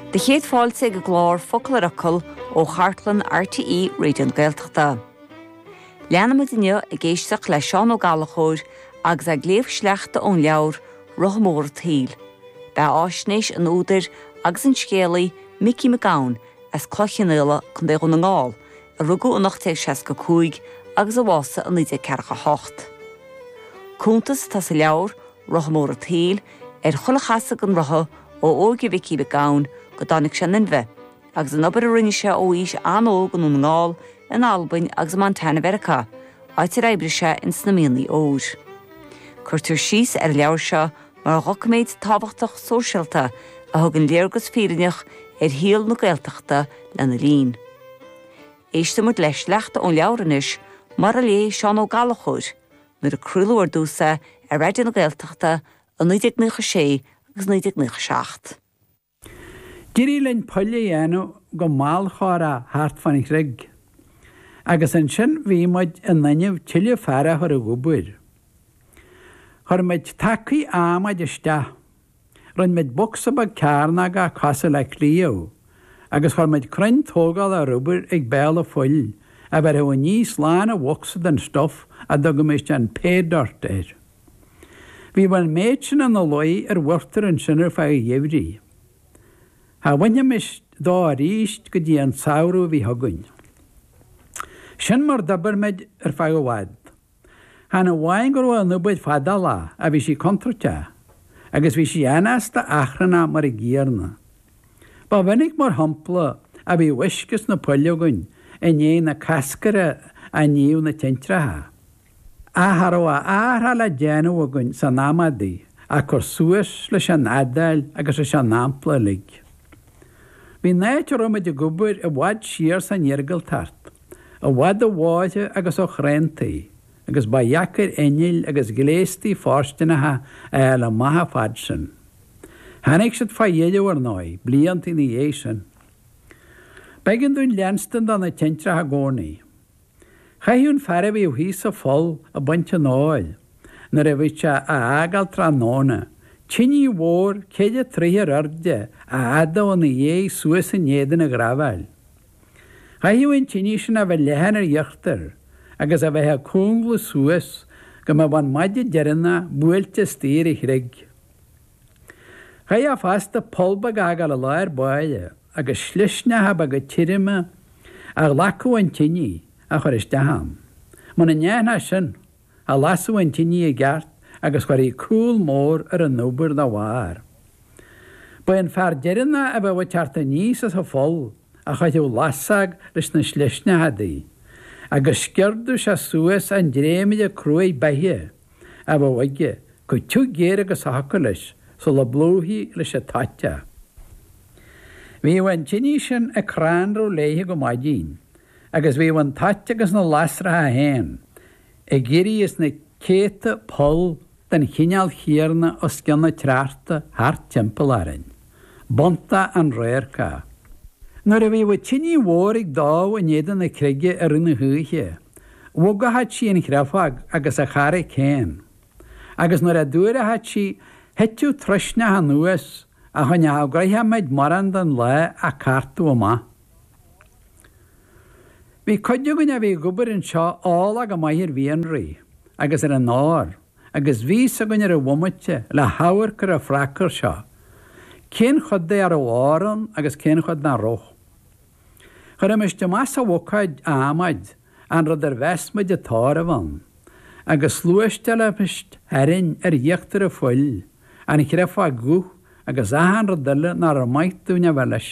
Bhur gcéad fáilte ag an gclár Focal ar Fhocal ó chartlann RTÉ Raidio na Gaeltachta. Leanfaimid inniu ag éisteacht le Seán Ó Gallachóir agus é ag léamh sleachta ón leabhar Rotha Mór an tSaoil, beatháisnéis an údair agus an scéalaí Micí Mac Gabhann as Cloich Chionnaola, Co. Dhún na nGall, a rugadh in 1865 agus a bhásaigh in 1948. Cuntas atá sa leabhar, Rotha mór a tsaoil, ar chuile chasadh den rotha ó óige Mhicí Mhic Gabhann go dtáinig sé in inmhe, agus an obair a rinne sé ó aois an-óg i nDún na nGall, in Albain agus i Montana Mheiriceá, áit ar oibrigh sé in sna mianaigh óir. Cuirtear síos ar an leabhar seo mar dhoiciméad tábhachtach sóisialta a thugann léargas fírinneach ar shaol na Gaeltachta lena linn. Éistfidh muid le sleachta ón leabhar anois, mar a léigh Seán Ó Gallachóir, Nuair a craoladh ar dtús é ar Raidió na Gaeltachta i 1996 agus 1997. D'éirigh linn poill a dhéanamh go mbaileadh chomhair thart fán chreig, agus ansin bhí muid in innimh tuilleadh fear a chur ag obair. Chuir muid tacaí adhmaid isteach. Rinne muid bocsa beag cearnóg a ba chosúil le cliabh agus chuir muid crann tógála rubair ag béal an phoill a bheirfeadh aníos lán an bhocsa den stuf a dtugaimis an Pay Dirt air. Bhí an méid sin ina luí ar mhortar ansin ar feadh an gheimhridh. Cha bhainfimis dó arís go dtí an samhradh a bhí chugainn. Sin mar d'oibir muid ar feadh i bhfad. Chan amháin go raibh an obair fadálá ach bhí sí contúirteach agus bhí sí anásta achrannach mar an gcéanna. Ba mhinic mar shampla a bhí uisce sna poill againn i ndiaidh na cascaire a níodh na tintreacha. Ach cha raibh a athrach le déanamh againn san am adaí ach cur suas leis an fhadáil agus leis an ampla uilig. Bhí an áit a raibh muid ag obair i bhfad siar san iargúltacht. i bhfad ó bhóithre agus ó chuantaí, agus ba dheacair innill agus gléastaí fóirsteanacha a fháil amach an fad sin. Tháinig siad faoi dheireadh, ar ndóigh, blianta ina dhiaidh sin. B'éigean dúinn leanstan do na tintreacha i gcónaí. Chaithfeadh an fear a bhíodh thíos sa pholl ag baint an óir, nuair a bhíodh sé á fhágáil tráthnóna, tinidh mhór ceithre troigh ar airde a fhadadh ina dhiaidh suas in éadan a ghrábháil. Chaithfeadh an tine sin a bheith leathan ar íochtar agus a bheith ag cúngladh suas go mbeadh an maide deireanach buailte suas ar an chreig. Chaithfeá fosta poll beag a fhágáil i lár báire agus slisneacha beaga tirime a ghlacfadh an tine a chur isteach ann. Muna ndéanfá sin, a lasadh an tine i gceart agus chuirfí cúl mór ar an obair dá bharr. Ba é an fear deireanach a bheadh ag teacht aníos as an pholl a chaithfeadh lasóg leis na slisneacha udaí, agus sciordadh sé suas an dréimire cruaidh beithe a bheadh aige chomh tiubh géar agus a thiocfadh leis sula bplúchfaí leis an toit é. Bhíodh an tine sin ag crannradh léithe go maidin, agus bhíodh an toit agus na lasracha féin ag éirí is na céadta poll den chineál chéarna os cionn an tsneachta thart timpeall orainn. B'iontach an radharc é. Nuair a bhíodh tine mhór ag dó in éadan na creige i rith na hoíche, bhogfadh sí an chréafóg agus an charraig féin, agus nuair a d'fhuarfadh sí, thiteadh troisneach anuas a choinneodh gnoitheach muid mórán den lá á cartadh amach. Bhí cuid againn a bhí ag obair anseo eolach go maith ar mhianraí agus ar an ór, agus bhí's againn ar an bhomaite le hamharc ar an phrácás seo, cén chuid de a raibh ór ann agus cén chuid nach raibh. Chuirimis amach sa bhucáid adhmaid an rud ar mheas muid an t-ór a bheith ann, agus shluaisteálaimis tharainn ar íochtar an phoill an chréafóg dhubh agus achan rud eile nach raibh maith dúinn a bheith leis.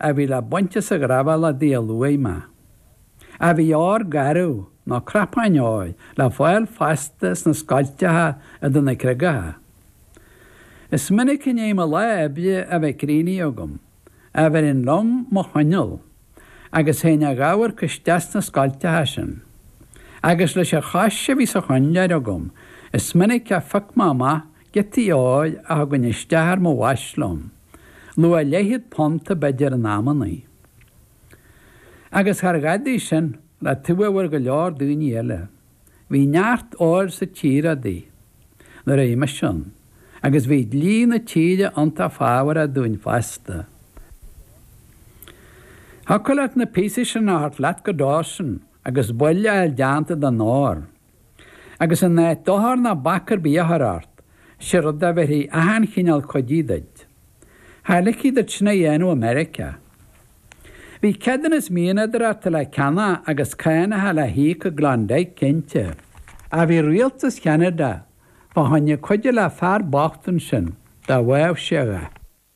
a bhí le baint as an ghraibhéal udaí a luaigh mé. Ach bhí ór garbh, nó cnapáin óir, le fáil fosta sna scoilteacha i dtaobh na gcreagacha. Is minic i ndiaidh mo lá oibre a bheith críochnaithe agam, a bheirinn liom mo choinneal, agus théinn a dh'amharc isteach sna scoilteacha sin. Agus leis an chois a bhí sa choinnleoir agam, is minic a phioc mé amach giotaí óir a thugainn isteach ar mo bhais liom, luach leathchéad punta b'fhéidir in amannaí. Agus char dhadaí sin, le taobh a bhfuair go leor daoine eile, bhí neart óir sa tír udaí nuair a bhí mise ann, agus bhí dlí na tíre iontach fabhrach dúinn fosta. Thiocfadh leat na píosaí sin a thabhairt leat go Dawson agus buille a fháil déanta den ór. Agus in áit dochar ná bac ar bith a chur ort, sé rud a bheirfí achan chineál cuidithe duit. Cha ligfí duit sin a dhéanamh i Meiriceá. Bhí ceadúnas mianadóireachta le ceannach agus cáineacha le híoc i gKlondike, cinnte. Ach bhí rialtas Cheanada fá choinne cuidiú le fear bocht ansin, dá bhfaigheadh sé a dhath.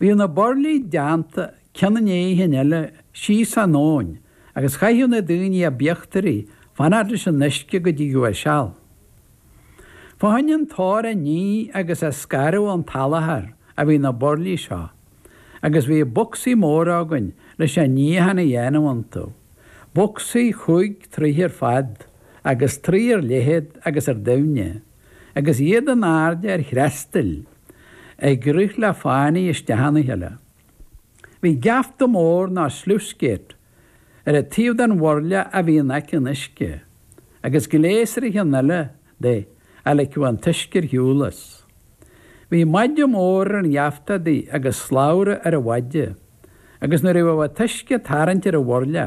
Bhíodh na burlaí déanta cionn i ndéidh an chinn eile síos an abhainn agus chaitheadh na daoine ab íochtaraí fanacht leis an uisce go dtí go dtigeadh a seal. Fá choinne an t-ór a ní agus a scaradh ón tsalachar a bhí na burlaí seo agus bhí bocsaí móra againn leis an níochán a dhéanamh iontu, bocsaí chúig troigh ar fad agus trí ar leithead agus ar doimhne. agus iad in airde ar threastail ag rith le fánaidh isteach ina chéile. Bhí geafta mór nó sluice gate ar an taobh den bhurla a bhí in aice an uisce, agus gléas ar an cheann eile de a ligfeadh an t-uisce ar shiúl as. Bhí maide mór ar an gheafta adaí agus slabhra ar an mhaide, agus nuair a bheadh an t-uisce ag tarraingt ar an bhurla,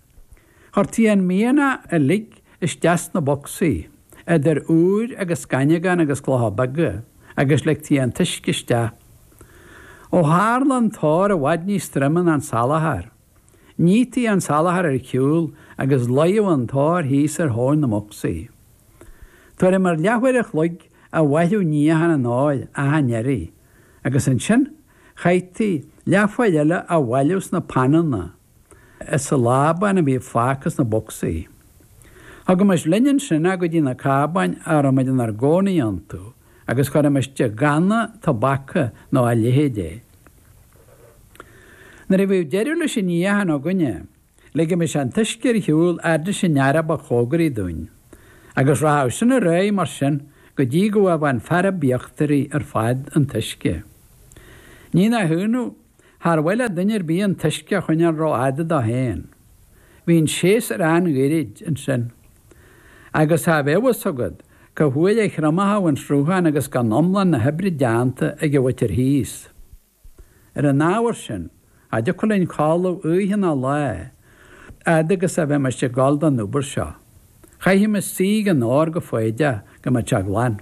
Chuirtí an mianach uilig isteach sna bocsaí, idir úir agus gaineamhán agus clocha beaga, agus ligtí an t-uisce isteach. Ó tharla an t-ór i bhfad níos troime ná an salachar, nítí an salachar ar shiúl agus luíodh an t-ór thíos ar thóin na mbocsaí. Tuairim ar leathuair a chloig a mhaireadh níochán an óir achan iarraidh, agus ansin chaithtí leathuair eile á bhailiú sna pananna, as an lábán a bhí fágtha sna bocsaí. Thugaimis linn ansin é go dtí na cábáin a raibhimid inár gcónaí iontu agus chuirimis i gcanna tobaca nó a leithéid é. Nuair a bhíodh deireadh leis an níochán againne, ligimis an t-uisce ar shiúl fhad leis an fhear ba chóngaraí dúinn, agus rachadh sin ar aghaidh mar sin go dtí go bhfaigheadh an fear ab íochtaraí ar fad an t-uisce. Ní nach ionadh, Char mhaith le duine ar bith an t-uisce a choinneáil rófhada dó féin. Bhí an séasúr an-ghairid ansin. Agus cha bheadh a fhios agat cá huair a thriomódh an sruthán agus gan iomlán na hoibre déanta ag an mhuintir thíos. Ar an ábhar sin, cha dtiocfadh linn codladh oíche ná lá, a fhad agus a bheimis ag gabháil don obair seo. Chaithimis suí ag an ór go foighdeach go mbeadh sé glan.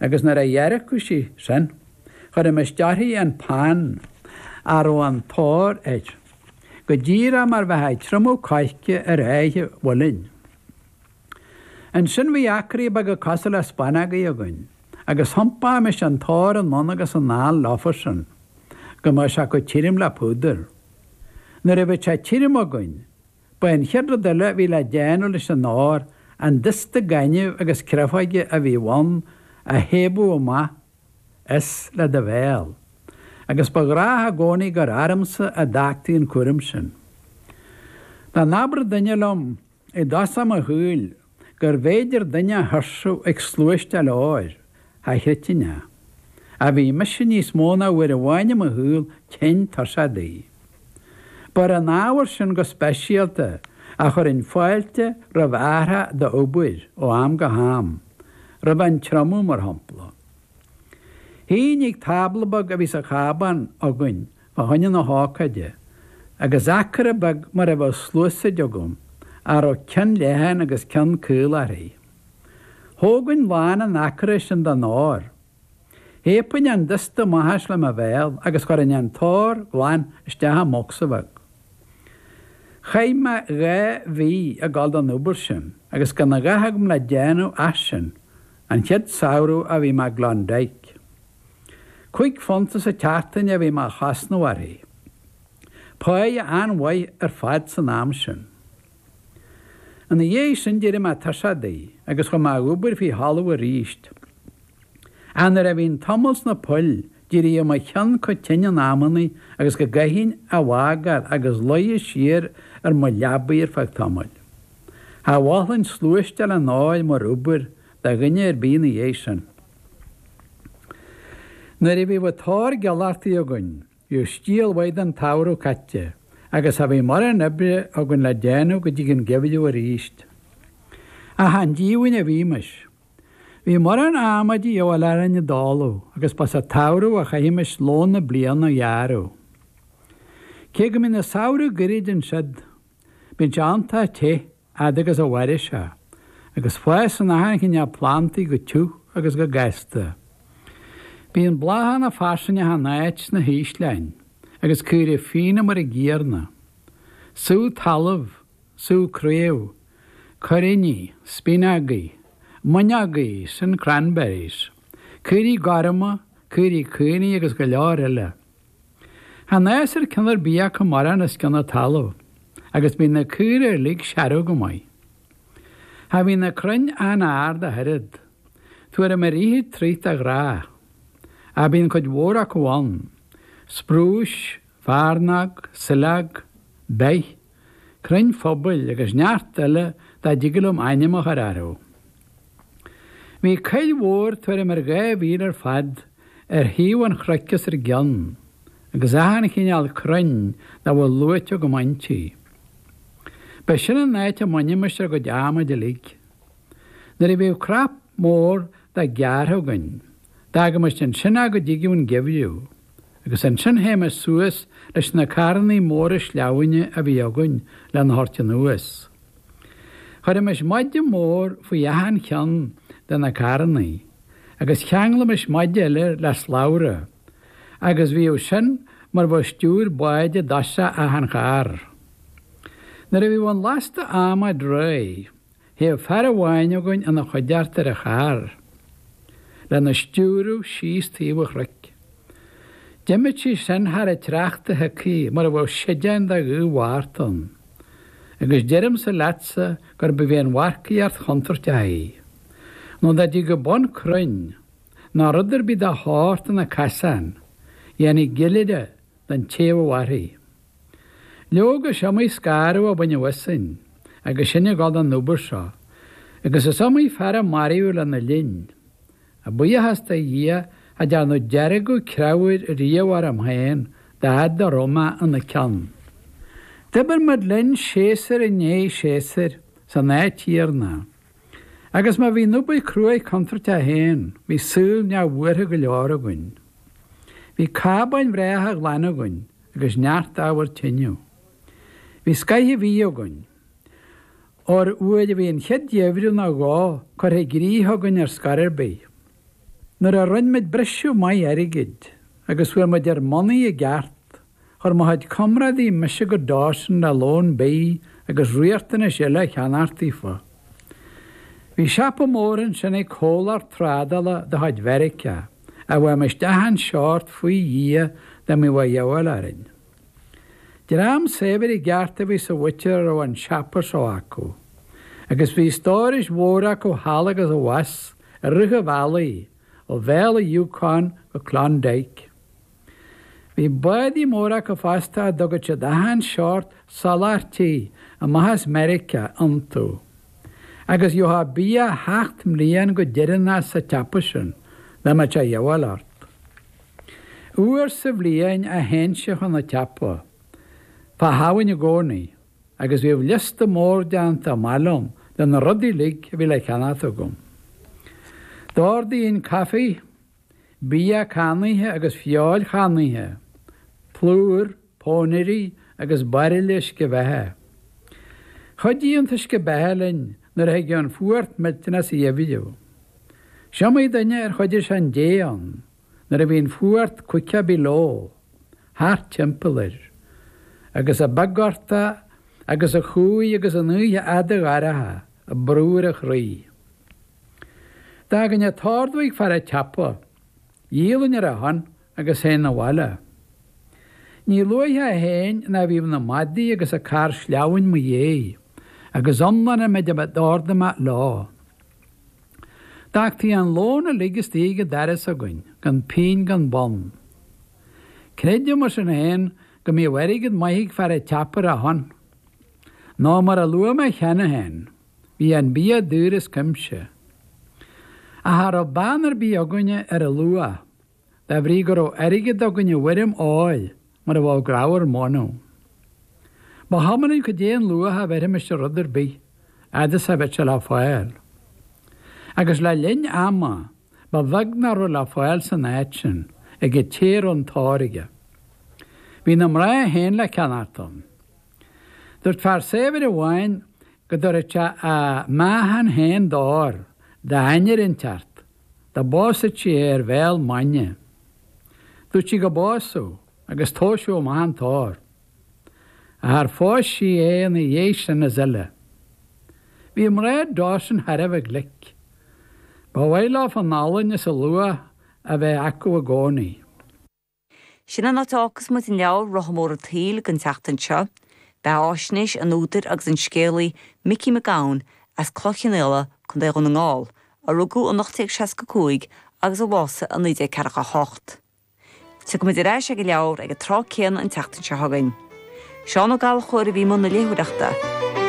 agus nuair a dhearcadh sí sin, chuirimis teas faoin phan a raibh an t-ór air, go díreach mar bheifeá ag triomú coirce ar áithe mhuilinn. Ansin bhí acraí beaga cosúil le spanógaí againn, agus thiompaímis an t-ór anonn agus anall leofa sin, go mbeadh sé chomh tirim le púdar. Nuair a bheadh sé tirim againn, Ba é an chéad rud eile a bhí le déanamh leis an ór an dusta gainimh agus creafóige a bhí ann a shéideadh amach as le do bhéal, agus ba ghnách i gcónaí gur ormsa a d'fhágtaí an cúram sin. Dá n-abradh duine liom i dtosach mo shaoil gurbh fhéidir duine a thuirsiú ag sluaisteáil óir, cha chreidfinn é. Ach bhí mise níos mó ná uair amháin i mo shaol tinn tuirseach de. Ba ar an ábhar sin go speisialta a chuirfinn fáilte roimh athrach d'obair ó am go ham, roimh an triomú mar shampla. Shuínn ag tábla beag a bhí sa chábán againn fá choinne na hócáide, agus acra beag mar a bheadh sluasaid agam, a raibh ceann leathan agus ceann caol uirthi. Thógainn lán an acra sin den ór. Shéidfinn an dusta amach as le mo bhéal agus chuirfinn an t-ór glan isteach i mbocsa bheag. Chaith mé dhá mhí ag dul don obair sin agus gan a dhath agam le déanamh ach sin, an chéad samhradh a bhí mé i gClondyke. Cúig phunta sa tseachtain a bhí mé a chosnamh uirthi. Páighe an-mhaith ar fad san am sin. Ina dhiaidh sin d'éirigh mé tuirseach di agus chuaigh mé a dh'obair faoi thalamh aríst. Ach nuair a bhínn tamall sna poill d'éiríodh mo cheann chomh tinn in amannaí agus go gcaithfinn a bhfágáil agus luí siar ar mo leabaidh ar feadh tamaill. Cha mholfainn sluaisteáil an óir mar obair do dhuine ar bith ina dhiaidh sin. Nuair a bhíodh an t-ór glanta againn, bhíodh stiall mhaith den tsamhradh caite, agus cha bhíodh mórán oibre againn le déanamh go dtí an geimhreadh aríst. Ach chan díomhaoin a bhímis! Bhí mórán adhmaid de dhíobháil orainn i dtólamh, agus ba sa tsamhradh a chaithimis lón na bliana a ghearradh. Cé go mbíonn na samhraidh goirid ansiud, bíonn sé iontach te, fhad agus a mhairfidh sé, agus fásann achan chineál plandaí go tiubh agus go gasta. Bíonn bláthanna fairsing achan áit sna hísleáin, agus caora fiáine mar an gcéanna. Sú talamh, sú craobh, cuiríní, spíonógaí, mónógaí, sin cranberries, caora gorma, caora caonaigh agus go leor eile. Chan fhásann ceann ar bith acu mórán os cionn an talaimh agus bíonn na caora uilig searbh go maith. Cha bhíonn na crainn an-ard ach oiread, tuairim ar fhiche troigh de ghnáth, ach bíonn cuid mhór acu ann, sprúis, fearnóg, saileog, beith, crainn phobail agus neart eile nach dtig liom ainm a chur orthu. Bhí coill mhór tuairim ar dhá mhíle ar fad ar thaobh an chnoic os ár gcionn, agus achan chineál crainn dá bhfuil luaite agam inti. Ba sin an áit a mbainimis ár gcuid adhmaid uilig. Nuair a bhíodh cnap mór de gearrtha againn, d'fhágaimis ansin é go dtigeadh an geimhreadh. agus ansin théimis suas leis na carrannaí móra sleamhaine a bhí againn lena thabhairt anuas. Chuirimis maide mór faoi achan cheann de na carrannaí agus cheanglaimis maide eile le slabhra agus bhíodh sin mar bheadh stiúir báid i dtosach achan charr. Nuair a bhíodh an lasta adhmaid réidh, Théadh fear amháin againn ina choigeart ar an charr, lena stiúradh síos taobh an chnoic. D'imíodh sí sin thar an tsneachta shiocthaí mar bheadh séideán de ghaoth Mhárta ann, agus deirimse leatsa gurbh í an mharcaíocht chontúirteach í, nó dá dtigeadh bun crainn, nó rud ar bith dá shórt ina casán, dhéanfaí gill uirre, den té a mhairfeadh. Leoga, is iomaí scanradh a baineadh asainn agus sinn ag dul don obair seo, agus is iomaí fear a maraíodh lena linn. A bhuíochas do Dhia, cha dearnadh deargadh creabhair riamh orm féin dá fhad a raibh mé ina ceann. D'oibir muid linn séasúr i ndiaidh séasúir san áit chéanna. Agus má bhí an obair cruaidh contúirteach féin, bhí saol neamhbhuartha go leor againn. Bhí cábáin bhreátha ghlana againn agus neart ábhar tineadh. Bhí scoith an bhídh againn. Óir nuair a bhí an chéad gheimhreadh nó dhó curtha i gcrích againn ar scor ar bith, nuair a rinne muid briseadh maith airgid agus fuair muid ár mbonnaí i gceart, Chuir mo chuid comrádaí mise go Dawson le lón bídh agus riachtanais eile a cheannacht daofa. Bhí siopa mór ansin ag comhlacht trádála de chuid Mheiriceá a bhfaighimis achan seort faoi Dhia dá mbíodh a dhíobháil orainn. Dream saibhir i gceart a bhí sa mhuintir a raibh an siopa seo acu, agus bhí stórais mhóra acu thall agus abhus i rith an bhealaigh ó Bhéal an Yukon go Klondike. Bhí bádaí móra acu fosta a dtugadh siad achan seort soláthairtí amach as Meiriceá iontu. Agus gheofá bia sheacht mbliain go deireanach sa tsiopa sin, dá mbeadh sé a dhíobháil ort. Uair sa bhliain a théinnse chun an tsiopa, fá Shamhain i gcónaí, agus bhíodh liosta mór déanta amach liom de na rudaí uilig a bhí le ceannacht agam. D'ordaínn caife. bia cannaithe agus feoil channaithe, plúr, pónairí agus bairille uisce beatha. Chuidíodh an t-uisce beatha linn nuair a thigeadh an fuacht millteanach sa gheimhreadh. Is iomaí duine ar choinnigh sé an dé ann nuair a bhí an fuacht caoga below, thart timpeall air, agus an bia gortach agus an chumhaidh agus an oíche fhada dhorcha ag brú ar a chroí. D'fhágainn a' t-ordú ag fear a' tsiopa. Dhíolainn ar a shon agus théinn 'na bhaile. Ní luaithe a théinn ná bhíodh na madaí agus a' carr sleamhain 'mo dhéidh, agus iomlán an mhéid a d'ordaigh mé leo. D'fhágtaí an lón uilig istigh ag a' doras againn, gan pínn gan bonn. Creidim, mar sin féin, go mbíodh airgead maith ag fear a' tsiopa ar a shon. Nó mar a luaigh mé cheana féin. Bhí an bia daor as cuimse. Ach cha raibh beann ar bith againne ar a luach, de bhrí go raibh airgead againn i bhfoirm óir mar a bheadh grabhar mónadh. Ba chuma linn cad é an luach a bheirfimis ar rud ar bith, fhad is a bheadh sé le fáil. Agus le linn ama, ba bheag nach raibh le fáil san áit sin, ag an té a raibh an t-ór aige. Bhí na mná féin le ceannacht ann. Dúirt fear saibhir amháin go dtabharfadh sé a meáchan féin d'ór, d'ainnir inteacht, dá bpósfadh sí é ar bhéal maidne. Dúirt sí go bpósfadh, agus tomhaiseadh amach an t-ór. Ach ar phós sí é ina dhiaidh sin is uile? Bhí mná Dawson thar a bheith glic. Ba mhaith leo an olann is a luach a bheith acu i gcónaí. Sin an áit a fhágfas muid an leabhar, Rotha Mór an tSaoil, don tseachtain seo. Beathfháisnéis an údair agus an scéalaí Micí Mac Gabhann as Cloich Chionnaola, Co. Dhún na nGall, a rugadh in 1865 agus a bhásaigh in 1948. Tiocfaimid ar ais ag an leabhar ag an tráth céanna an tseachtain seo chugainn. Seán Ó Gallchóir a bhí i mbun na léitheoireachta.